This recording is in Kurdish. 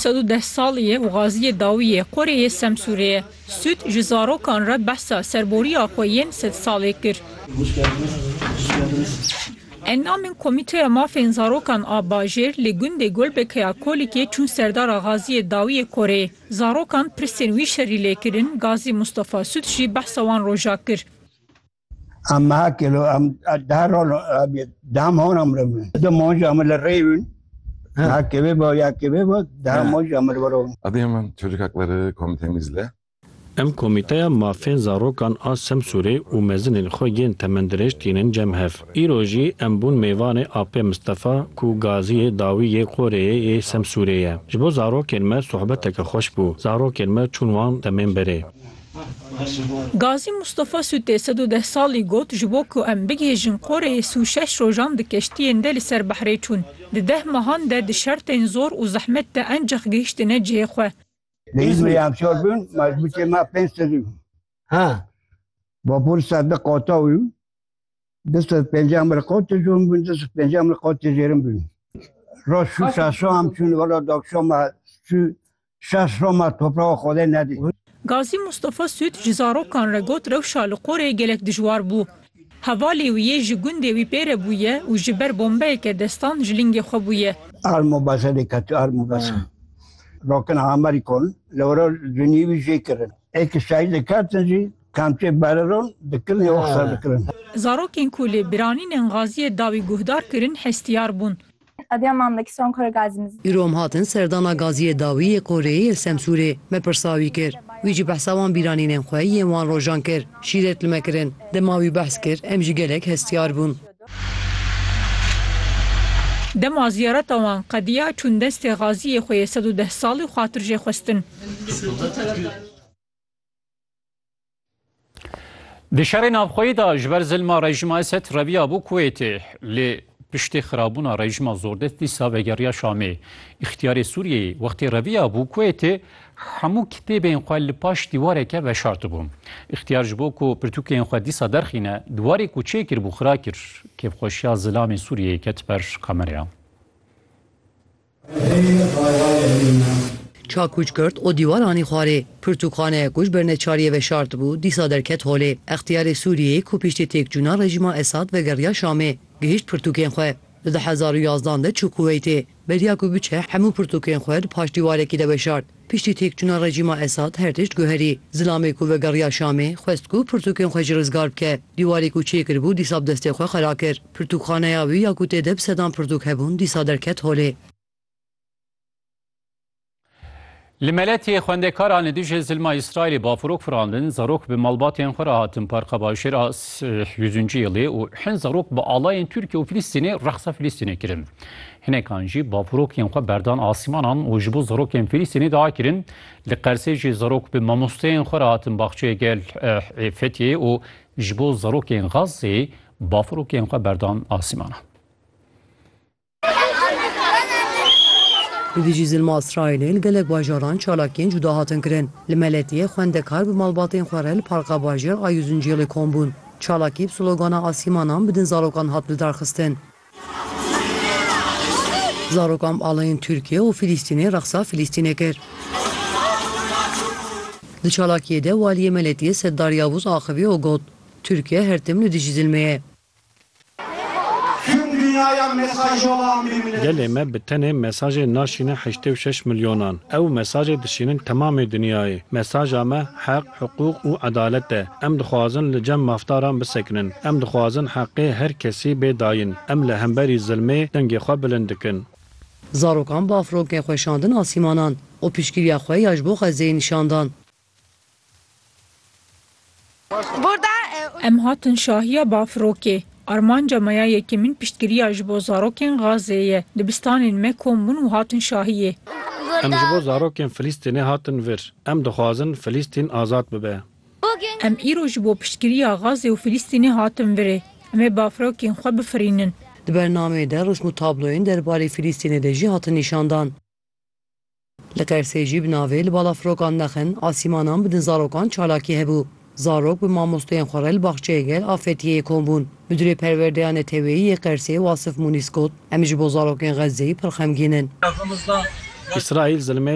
Sed û deh salî ye û Gaziyê Dawî yê qorê yê Semsûrê ye. Sûd ji zarokan re behsa serborîya xwe yên sed salê kir. Endamên Komîteya Mafên Zarokan a Bajêr li gundê Golbeke ya Kolîkê çûn Serdara Gaziyê Dawî yê qorê. Zarokan pirsên wî şerî lê kirin, Gazî Mustafa Sûd jî behsa wan roja kir. Em meha kilo em daha rol daha mor em re bin. De moj em le rey bin. Daha kebe bo ya kebe bo daha moj em re baro. Adıyaman Çocuk Hakları Komitemizle Em Komîteya Mafên Zarokan a Semsûrê û mezinên xwe yên temendirêj tînin cem hev. Îro jî em bûn mêvanê AP Mistefa ku gaziyê dawî yê Qoreyê yê Semsûrê ye. Ji bo zarokên me sohbeteke xweş bû. Zarokên me çûn wan demên berê. Gazî Mustafa Sûtê sed û deh salî got, Ji bo ku em bigihêjin Qoreyê si û şeş rojan di keştiyên de li ser behrê çûn. Di deh mehan de di şertên zor û zehmet de encex gihiştine cihê xwe. Lê Îzmîrê em çar bûn, mezbûtê me pênc sed û vapûr sed di qata û du sed pênceh mir qatê jon bûn, du sed pênceh mir qatê jêrin bûn. Roj çû Şaşo em çûn, wela daxşama çû şer şoma toprawa Xwedê nedît. Gazî Mustafa Sûd ji zarokan re got rewşa li qorê gelek dijwar bû. Hevalê wî yê ji gundê wî pê re bûye û ji ber bombeyeke destan ji lingê xwe bûye. Ar mobeze lê ketî ar mobeze. Rokina Amerî kon li were cunî wî jê kirin. Ê ke şahîd dikertin jî kamçê bereron dikirin ê oxser dikirin. Zarokên ku lê biranînên Gaziyê dawî guhdar kirin hestiyar bûn. Îro em hatin serdana gaziyê dawî yê Qoreyê yê Semsûrê. Me pirsa wî kir. Wî jî behsa wan bîranînên xwe yên wan rojan kir. Şîret li me kirin. Dema wî behs kir em jî gelek hestiyar bûn. Dema ziyareta wan qediya çûn destê gaziyê xwe yê sed û deh salî xwatir jê xwestin. Di şerê navxweyî de ji ber zilma rejima Esed reviya bû Kuwêtê lê piştî xirabûna rejima zordest dîsa vegeriya Şamê. Îxtiyarê Sûriyeyê wextê reviya bû Kuwêtê hemû kitêbên xwe li paş dîwareke veşartibû. Îxtiyar ji bo ku pirtûkên xwe dîsa derxîne dîwarê ku çê kiribû xira kir. Kêfxweşiya zilamê Sûriyeyê ket ber kamereyan. Ça kû ji girt û dîwar anî xwarê. Pirtûkaneyek ku ji ber neçariyê veşart bû, dîsa derket holê. Extiyarê Sûriyeyê ku piştî têkçûna rejîma Esad vegeriya Şamê, gihîşt pirtûkên xwe. Li du hezar û yazdan de çû Kuweytê. Beriya ku biçe hemû pirtûkên xwe di paşdîwarekî de veşart. Piştî têkçûna rejîma Esad her tişt guherî. Zilamê ku vegeriya Şamê, xwest ku pirtûkên xwe jî rizgar bike. Dîwarê ku çêkiribû dîsa bi destê xwe xera kir. Pirtûkxaneya wî ya ku tê de bi sedan pirtûk hebûn dîsa derket holê. Li Meletiyê xwendekaran li dijî zilma Îsraîlê bafirok firandin, zarok bi malbatên xwe re hatin parka bajêra Yüzüncü Yılı û hin zarok bi alayên Tirkiye û Filîstînê rexsa Filîstînê kirin. Hinekan jî bavurokên xwe berdan asîmanan û ji bo zarokên Filîstînê diakirin. Li Qersê jî zarok bi mamosteyên xwe re hatin baxçeyê gel ê Fetiyê û ji bo zarokên Xazzê bavurokên xwe berdan asîmanan. Li dijî zilma Îsraîlê li gelek bajaran çalakiyên cuda hatin kirin. Li Meletiyê xwendekar bi malbatên xwe re li parka bajêr a Yüzüncü Yıl'ê kom bûn. Çalakî bi slogana asîmanan bi din zarokan hat lidarxistin. Zarokan bi alayên Tirkiye û Filîstînê reqsa Filîstînê kir. Di çalakiyê de Waliyê Meletiyê Seddar Yavuz axivî û got, Tirkiye her tim li dijî zilmê ye. Gelê me bi tenê mesajê naşîne heştê û şeş milyonan. Ew mesajê dişînin temamê dinyayê. Mesaja me heq, hiqûq û edalet e. Em dixwazin li cem mafdaran bisekinin. Em dixwazin heqê her kesî bê dayîn. Em li hemberî zilmê dengê xwe bilind dikin. Zarokan bi afronkên xwe şandin asîmanan û piştgiriya xwe ya ji bo Xezzeyê nîşan dan. Em hatin şahiya bafrokê. Armanca me ya yekemîn piştgiriya ji bo zarokên Gazeyê ye. Dibistanên me kom bûn û hatin şahiyê. Em ji bo zarokên Filîstînê hatin vir. Em dixwazin Filîstîn azad bibe. Em îro ji bo piştgiriya Gazê û Filîstînê hatin virê. Em ê bafirokên xwe bifirînin. Di bernameyê de rûsm û tabloyên derbarê Filîstînê de jî hatin nîşandan. Li Qersê jî bi navê Li balafirokan nexin asîmanan bidin zarokan çalakî hebû. Zarok bi mamostoyên xwe re li baxçeyê gel a Fetiyeyê kom bûn. Midûrê perwerdeya neteweyî yê Qersê Wasif Mûnîs got, Em ji bo zarokên Xezzeyê pir xemgîn in. Îsraîl zilmê